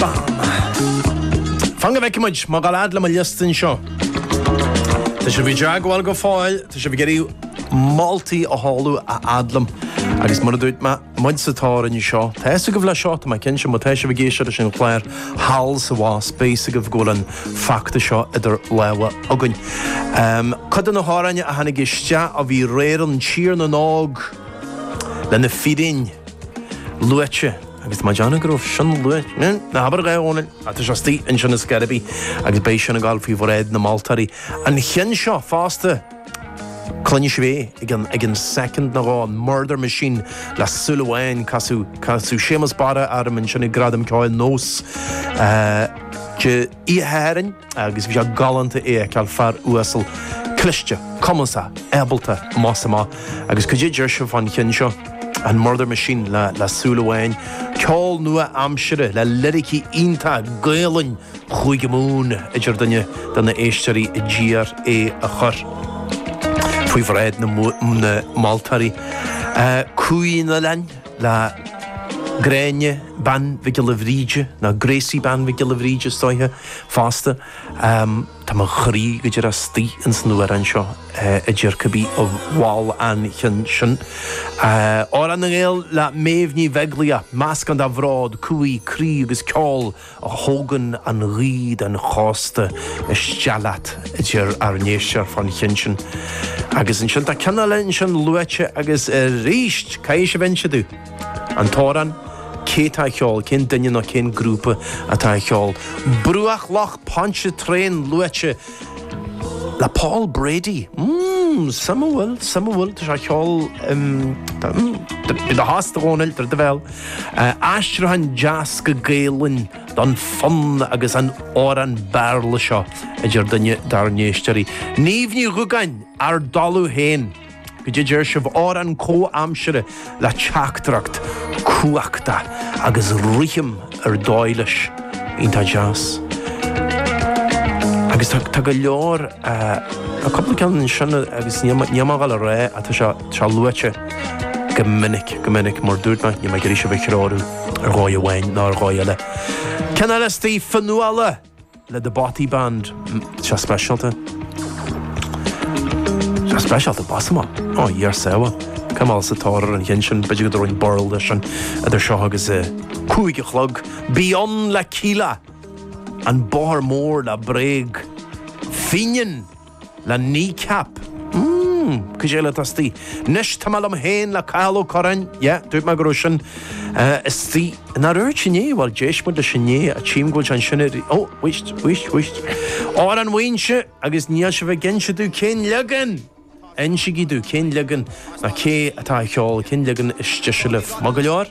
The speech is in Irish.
Bam! Fan go bhfeicfidh muid mé ag gabháil a fhad le mo liosta anseo. Tá sibh i dteagmháil go fóill, tá sibh ag iarraidh moltaí a sheoladh a fhad liom, agus mar a dúirt mé muid sa tóir anseo, tá fhios agaibh le seo, tá mé cinnte, má tá sibh ag éisteacht leis an chlár thall is abhus, beidh fhios agaibh go bhfuil an feachtas seo idir lámha againn. Cuid de na hamhráin a tháinig isteach ó bhí aréir ann, Tír na nÓg le Na Fíréin luaite. Agus mé ag déanamh go raibh sin luaite, ná habair é, a Dhónaill, ach tá sé istigh ansin ar scor ar bith agus beidh sin ag dul faoi bhráid na moltóirí an ceann seo fosta. Cluinfidh sibh é i gceann soicind nó dhó, an Murder Machine le Súil Amháin, casadh Séamus Barra orm ansin ag Gradaim Cheoil NÓS. Oíche Shathairn agus bhí sé galánta é a fheiceáil, fear uasal, cliste, cumasach, ábalta, amach is amach, agus caidé a deir sé fán cheann seo, an Murder Machine le le súil amháin, ceol nua aimsire le liricí iontacha Gaolainn Chúige Mumhan a deir duine de na éisteoirí a d'iarr é a chur faoi bhráid na na moltóirí. Cumhaidh an Oileáin. le Gráinne Bean Mhic Giolla Bhríde, nó Gracie Bean Mhic Giolla Bhríde is dóiche, fosta. Tá mo chroí go díreach istigh ins an amhrán seo a deir cibé a mhol an ceann sin. Amhrán na nGael le Méabh Ní Bheaglaoich, meascán de bhród, cumhaidh, croí agus ceol. a thógann an ghaoth den chósta isteach leat, a deir ár n-éisteoir fán cheann sin. Agus ansin tá ceann eile ansin luaite agus arís! Caithfidh sibh inse domh, an t-amhrán, cé tá á cheol, cén duine nó cén grúpa atá á cheol. Bruach Loch Pontchartrain luaite! le Paul Brady. Mmm, suimiúil, suimiúil, tá sé ag ceol im, im, bí i do thost a Dhónaill, druid do bhéal. Aistriúchán deas go Gaelainn don fonn agus an amhrán Béarla seo, a deir duine dár n-éisteoirí. Niamh Ní Dhúgáin, Ár dTalamh Féin. caidé a deir sibh, amhrán comhaimseartha le teachtaireacht chumhachtach agus rithim ar dóigh leis, iontach deas. Agus tá, tá go leor, tá cúpla ceann ansin agus níl mé, níl mé ag dul a rá, ach tá sé, tá sé luaite go minic, go minic, mar dúirt mé, níl mé ag iarraidh sibh a threorú ar dhóigh amháin ná ar dhóigh eile. Ceann eile istigh, Fionnghuala. le The Bothy Band, seo speisialta. Seo speisialta, amach is amach. Ó, Dhia ár sábháil. Caithfidh mé a dhul sa tóir ar an cheann sin, b'fhéidir go dtabharfainn birl dó sin idir seo agus a cúig a chlog. Bí Ann le Kíla, An Bóthar Mór le Bréag. Fíneann! le Kneecap. Mmm, caidé eile atá istigh. Anois, tá mé liom féin le Cathal Ó Curráin, yeah, dúirt mé go raibh sin istigh. Nár dhúirt mé inné? Bhuel, d'éist muid leis inné, tchím go bhfuil sé ansin ar, ó, wait, wait, wait. Amhrán Mhuínse, agus níl sibh ag inse domh cén leagan! Insigí domh, cén leagan, nó cé atá á cheol, cén leagan is deise libh. Maith go leor.